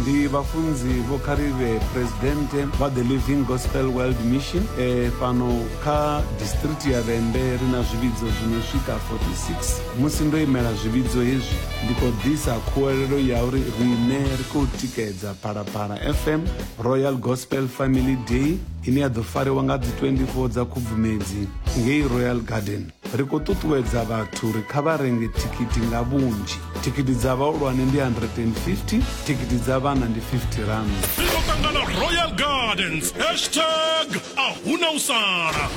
ndi vhafunzi vho kharivhe presidente vha the living gospel world mission e, fhano kha district ya vhembe ri na zwivhidzo zwino swika 46 musi ndo imela zwivhidzo hezwi ndi khou ḓisa khuwelelo ya uri riṋe ri khou tikedza phalaphala fm royal gospel family day ine ya ḓo fariwa nga dzi 24 dza khubvumedzi ngei royal garden Ri khou ṱuṱuwedza vhathu uri kha vha renge thikhithi nga vhunzhi. Thikhithi dza vhahulwane ndi 150, thikhithi dza vhana ndi 50 rand. Ri ḓo ṱangana Royal Gardens hashtag a huna u sala.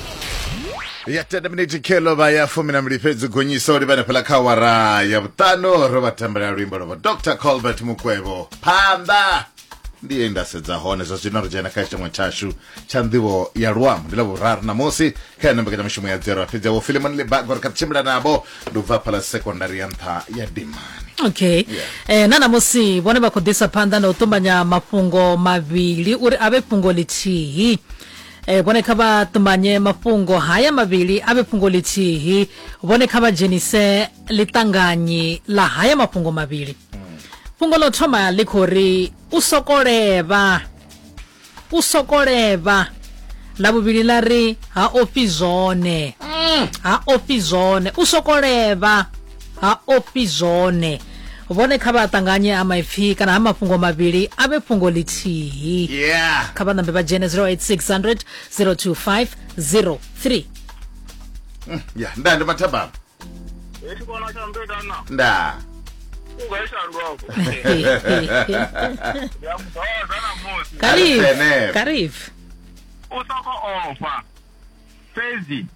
ya tenda miniti khelo vha ya fumi na mbili fhedzi gonyisa u livhana fhala kha wara ya vhuṱanu ro vha tambela luimbo lwavho dr colbert mukwevho phanḓa ndi ye nda sedza hone zwa zwino ri dzhena kha tshiṅwe tshashu tsha nḓivho ya luambo ndi ḽa vhuraru ṋamusi kha yone mbekanyamushumo ya dzero fhedzi yavho filimoni libago ri kha ḓi tshimbila navho ndi u bva phala sekondari ya nṱha ya dimani okay yeah. eh, na ṋamusi vhone vha khou ḓisa phanḓa na u ṱumanya mafhungo mavhili uri a vhe fhungo ḽithihi E, vhone kha vha ṱumanye mafhungo haya mavhili a vhe fhungo ḽithihi vhone kha vha dzhenise ḽiṱanganyi ḽa haya mafhungo mavhili fhungo ḽo thoma ḽi khou ri u sokolevha u sokolevha ḽa vhuvhili ḽa ri ha ofhi zwone ha ofhi zwone u sokolevha ha ofhi zwone vhone kha vha ṱanganye ha maipfi kana ha mafhungo mavhili a vhe fhungo ḽithihi yeah kha vha ṋambe vha dzhene 0860 025 03 mm, ya nda ndi mathabama nda karif karif u soko ofa fhedzi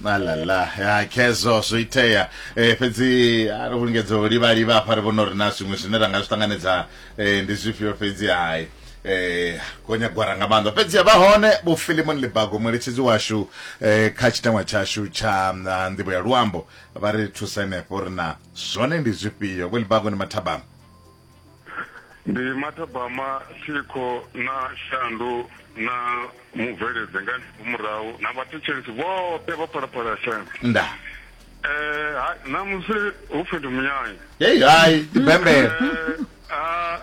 malala ya khezwo zwo itea eh, fhedzi a ri vhulungedzo u livhaliva hafha ri vhona uri na zwiṅwe zwine ra nga zwi ṱanganedza eh, ndi zwifhio fhedzi hai eh gonya gwara nga maanḓa fhedzi ya vha hone vho filimon libago mueletshedzi washu eh kha tshitangwa tshashu tsha mm, ah, nḓivho ya luambo vha ri thusa henefho ri na zwone ndi zwifhio vho libago ni mathabama ndi mathabama thikho na shandu na mubveledze nga murahu na vhathetshelesi vhoṱhe vha phalaphala ya shandu nda eh ha- namusi hu pfi ndi munyanya hei hai ndi bembele Eh, ah,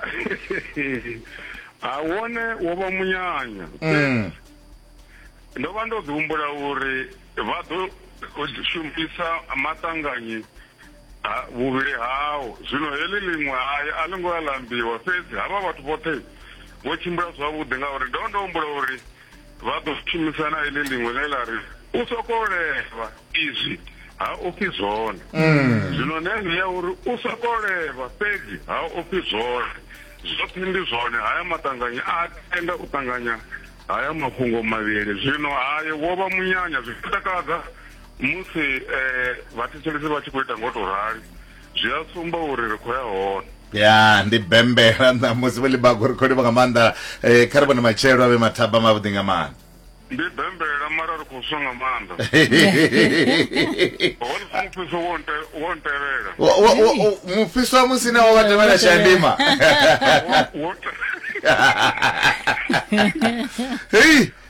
ah, wone wo vha munyanya Mm. ndo vha ndo ḓi humbula uri vha ḓo shumisa maṱanganyi Ha, vhuvhili hao zwino heḽi ḽiṅwe hai a ḽi ngo ya lambiwa fhedzi havha vhathu vhoṱhe vho tshimbila zwavhuḓi ngauri ndo ndo humbula uri vha ḓo shumisana iḽi ḽiṅwe ḽe ḽa ri u sokou levha izwi ha ofhi zwone mm. zwino nene ya uri u sokou levha fhedzi ha ofhi zwone zwoṱhe ndi zwone haya maṱanganya a tenda u ṱanganya haya mafhungo mavhili zwino haye wo vha munyanya zwi takadza Musi vhathetshelesi vha tshi khou ita ngo to rali zwi a sumba uri ri khou ya hone ya ndi bembela ṋamusi vho libago ri khou livha nga maanḓa um kha ri vhone matshelo a vhe mathaba mavhuḓi nga maanḓa ndi bembela mara ri khou swa nga maanḓa mufhiso wo ntevhela mufhiso wa musi na wa wa tevhela shandima hei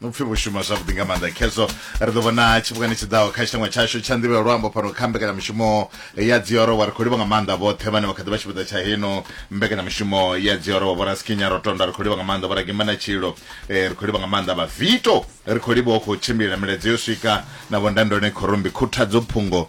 upfi vho shuma zwavhuḓi nga maanḓa khezwo ri ḓo vhona tshifhingani tshi ḓaho kha tshitangwa tshashu tsha nḓivho ya luambo fhano kha mbekanyamushumo ya dzioro wa ri khou livha nga maanḓa vhoṱhe vhane vha kha ḓi vha tshipiḓa tsha heno mbekanyamushumo ya dzioro wa vhoraskinya ro tonda ri khou livha nga maanḓa vhoragima na tshilo eh, ri khou livha nga maanḓa vhavito ri khou livha u khou tshimbilela miladzo yo swika na vhondandone khorombi khuthadzo phungo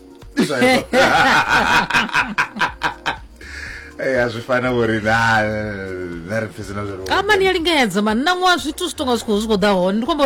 a zwi fana vhori na na ri pfhi zwina zwi amani ya lingedza mani na ṅwaha zwithu zwi tonga zwi khou zwi khou ḓa hone ndi khou amba uri